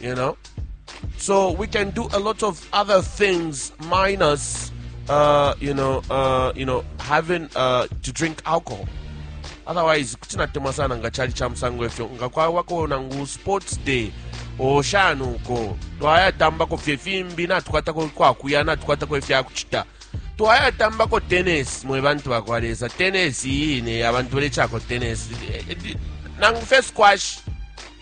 You know? So we can do a lot of other things minus, uh, you know, uh, you know, having uh, to drink alcohol. Otherwise, kutinatema sana nga chali cha msango efyo nga kwa wako nangu sports day oshani uko twayatambako fye fimbi natukwatako kwakuya natukwatako ifyakuchita twayatambako tennis mwe bantu bakwa lesa tennis iyine abantu balechako tennis nangu fe squash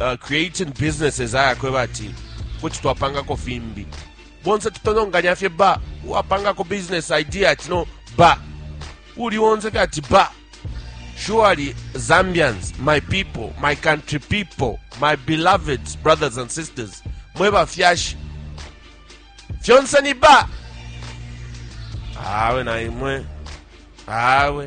uh, creating businesses ayakweba ati kuti twapangako fimbi bonse tutononganya fye ba uwapangako business idea ati no ba uli wonse fye ati ba surely zambians my people my country people my beloved brothers and sisters mwe bafyashi fyonse ni ba awe na imwe awe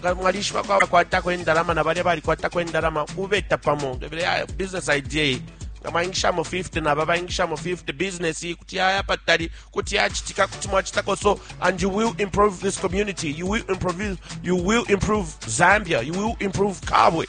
nga mwalishibako abakwatako endalama na balya balikwatako endalama ubeta pamo ah, business idea nga mwayingishamo 50 naba bayingishamo 50 business iyi kuti yaya patali kuti yachitika kuti mwachitako so and you will improve this community you will improve, you will improve zambia you will improve kabwe